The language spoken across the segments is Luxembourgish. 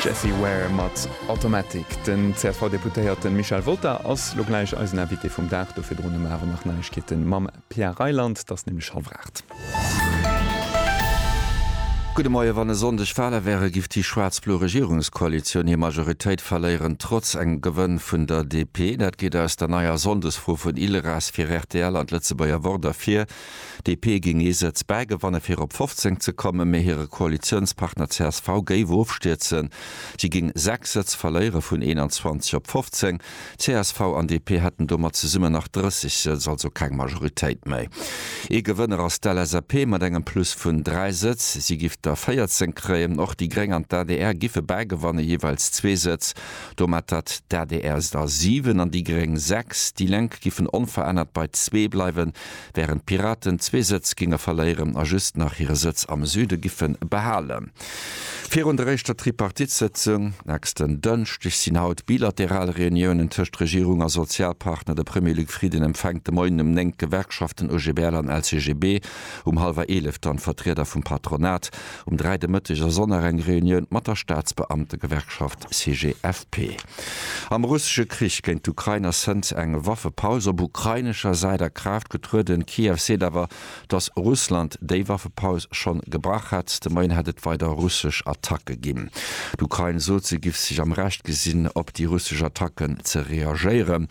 Jessie Ware mat Automatic. Den CSV-Deputéierte Michel Wolter ass lo gläich eisen Invité vum Dag. Do virdrun hu mer awer nach Neiegkeete mam Pia Reiland. Et ass nämlech hallef aacht. Gudde Moie. Wann e Sonndeg Wale wäre giff déi schwaarz-blo Regierungskoalitioun hir Majoritéit verléieren, trotz engem Gewënn vun der DP. Dat geet aus der neier Sonndesfro vun ILRAS fir rtl an d'Lëtzebuerger Wort ervir. DP géing ee Sëtz bäigewanne fir op 15 ze kommen, mee hire Koalitiounspartner csv géif ofstierzen. Si géing 6 Sëtz verléiere vun 21 op 15. Csv an DP hätten domat zesummen nach 30 Sëtz, also keng Majoritéit méi. Ee Gewënner ass d'LSAP mat engem Plus vun 3 Sëtz, si giff der 14 kréien. Och déi Gréng an d'ADR giffe bäigewanne jeeweils zwee Sëtz. Domat hätt d'ADR der 7 an déi Gréng 6. Déi Lénk giffen onverännert bei zwee bleiwen. wärend d'Piraten zwee Sëtz géinge verléieren a just nach hire Sëtz am Süde giffe behalen. Virun der éischter Tripartite-Sëtzung nächsten Dënschdeg sinn haut bilateral Reuniounen tëscht Regierung a Sozialpartner. De Premier Luc Frieden empfänkt de Moien um 9 d'Gewerkschaften OGBL an LCGB, um hallwer 11 dann d'Vertrieder vum Patronat. Um 3 de Mëtteg ass och nach eng Reunioun mat der Staatsbeamtegewerkschaft CGFP. Am russesche Krich géint d'Ukrain ass hënt eng Waffepaus op ukrainescher Säit a Kraaft getrueden. Kiew seet awer, datt Russland déi Waffepaus schonn gebrach hätt. De Moien hätt et weider russesch Attacke ginn. D'Ukrain sot, se giff sech am Recht gesinn, op déi russesch Attacken ze reagéieren.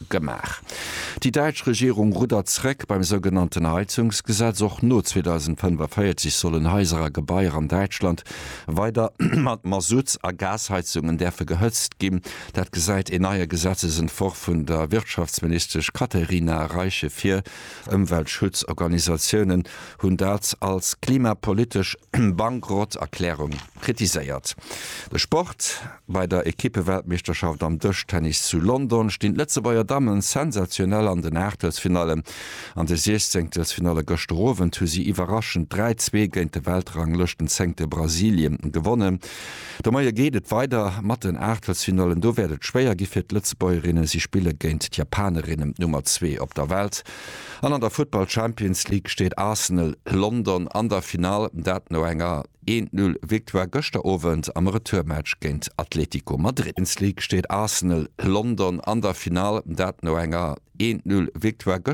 Gemaach. Déi däitsch Regierung ruddert zréck beim sougenannten Heizungsgesetz. Och no 2045 sollen Haiser a Gebaier an Däitschland weider mat Masutts a Gasheizungen däerfe gehëtzt ginn. Dat gesäit een neie Gesetzesentworf vun der Wirtschaftsministesch Katherina Reiche vir. Ëmweltschutzorganisatiounen hunn dat als klimapolitesch Bankrotterklärung Kritiséiert de Sport, Bei der Ekippeweltmeeschterschaft am Dëschtennis zu London stinn d'Lëtzebuerger Damme sensationell an den Aachtelsfinallen. An de Siechzéngtelsfinalle gëschter Owend hu si iwwerraschend 3, 2 géint de Weltranglëschtenzéngte Brasilien gewonnen. De Moie geet et weider mat den Aachtelsfinallen. Do wäert et schwéier gi fir d'Lëtzebuergerinnen. Si spille géint d'Japanerinnen, d'Nummer zwee op der Welt. An an der Futtball-Champions League steet Arsenal London an der Finall, dat no enger Eent Null Victoire gëschter Owend am Retourmatch géint Atlético Madrid. Champions League steet Arsenal London an der Finall, dat no enger Eent Null Victoire gëschter.